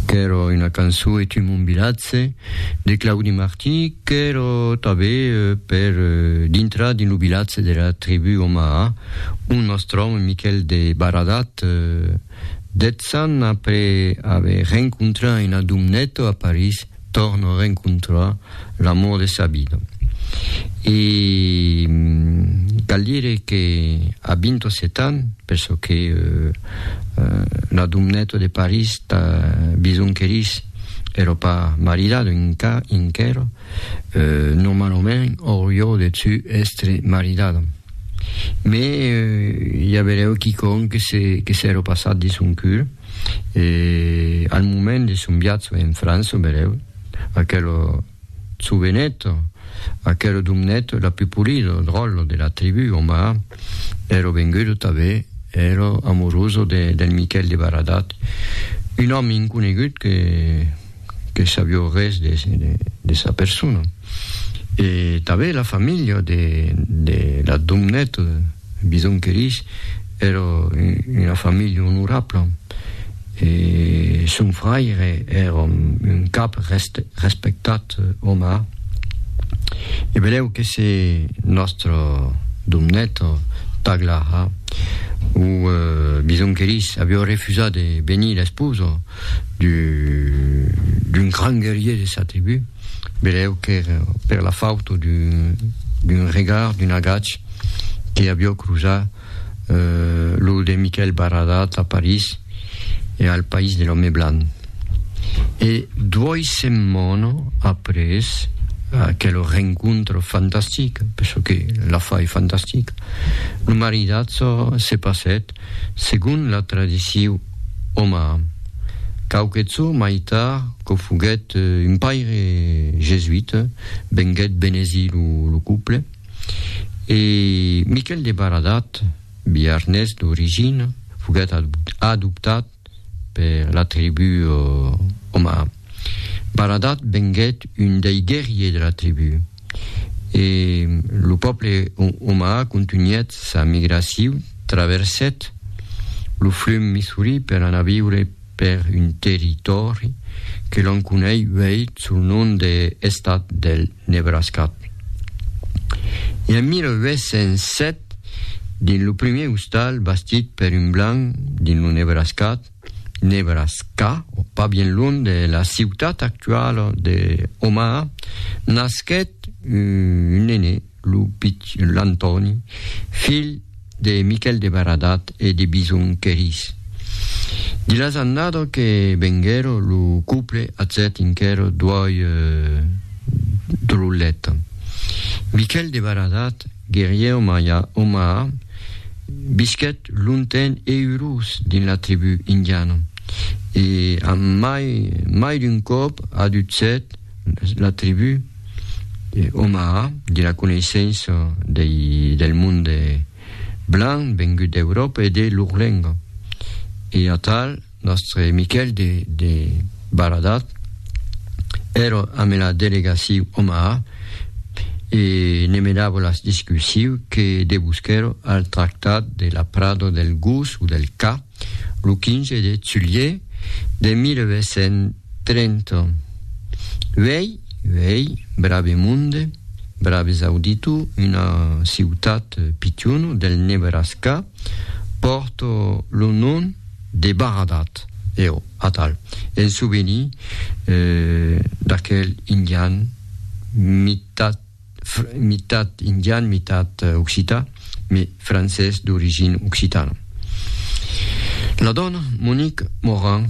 Qu'èra una cançó E tu mon vilatge de Claudi Martí qu'èra tanben per dintrar dins lo vilatge dera tribú Omaha ont nos tròbam Miquèl de Baradat. Dètz ans après aver rencontrat una domneta a París, Tòrno rencontrar l'amor de sa vida. E cal dire que a 27 ans, per çò que la domneta de París tà bisonquerís, èrò pas maridada enquèra, normalament aurió deçu èstre maridada. Mès i averèu quicòm que s'èrò passat de son cur. e al moment de son viatge en França, berèu, aquel jovenet, aquel domnet la plus polida, dròlle, de la tribu Omar, ère vengut tanben hèr amoroso del Miquèl de Baradat, un òme inconegut que, que sabió res de de sa persona. E tanben la familha de de la Domnèt Bison que dich èra una familha onorabla e son fraire èra un cap respectat omà. E benlèu que se nòstra Domnèta Taglaha o Bison que dich avió refusat de benir l'esposa, d'un grand guerrier de sa tribu, velèu qu'èra per la fauta d'un regard, d'un agach que avió cruzar lo de Miquèl Baradat a París e al país de l'òme blanc. E duòi setmana après aquela rencontra fantastica, per çò que la fa ei fantastica, lo maridatge se passèt. segon la tradiciu omara, quauque çò mai tard quò foguèt un paire jesuita, venguèt benezir lo couple, e Miquel de Baradat, biarnés d'origina, foguèt adoptat. Per la tribu Oma, Baradat venguèt un dei guerrier de la tribu e lo pòble Oma contunhèt sa migraciu, traversèt lo flum Missouri per anar viure per un territòri que l'on conei uèi sul nom de Estat del. Nebraska. E en 1807, dins lo primièr ostal bastit per un blanc dins lo Nebraska, Nebraska, pas bien lunh de la ciutat actuala de Omaha, nasquèt un nené, lo pichon, l'Antòni, filh De Miquèl de Baradat e de Bison Querís. Di las andado que venguèro lo couple atzèt inquèro d'uòi drollet. Miquèl de Baradat, guerrièr maia o maha, visquèt longtemps e urós dins la tribú indiana e a mai mai d'un còp adutzèt la tribú, Omaha, de la coneissença dei, del monde blanc vengut d'Euròpa e de lor lenga. E atal, nòstre Miquèl de, de Baradat èra amé la delegaciu Omaha e ne menava las discussiu que debusquèra al tractat de la prada del Gos o del Ca, lo 15 de julhet de 1830. Uèi, uèi, brave monde, braves auditor, una ciutat pichona del Nebraska pòrta lo nom de Baradat, eo, atal, en souvenir d'aquel indian mitat mitat indian, mitat occitan, mais francés d'origine occitana. La dòna Monique Morin,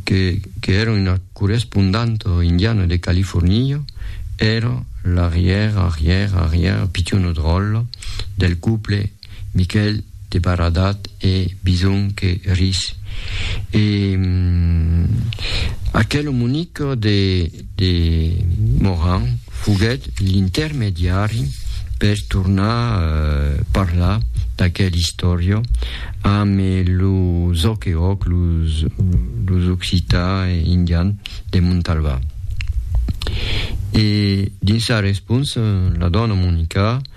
que, que èra una correspondanta indiana de California, èra l'arrièr, arrièr, arrièr pichona dròlla del couple Miquèl de Baradat e Bison que ris. E aquel omonic de, de Moran foguèt l'intermediari per tornar parlar d'aquel istòria amb los Okeok, los, los occitans e indians de Montalvan. E dins sa responsa, la dòna Monica,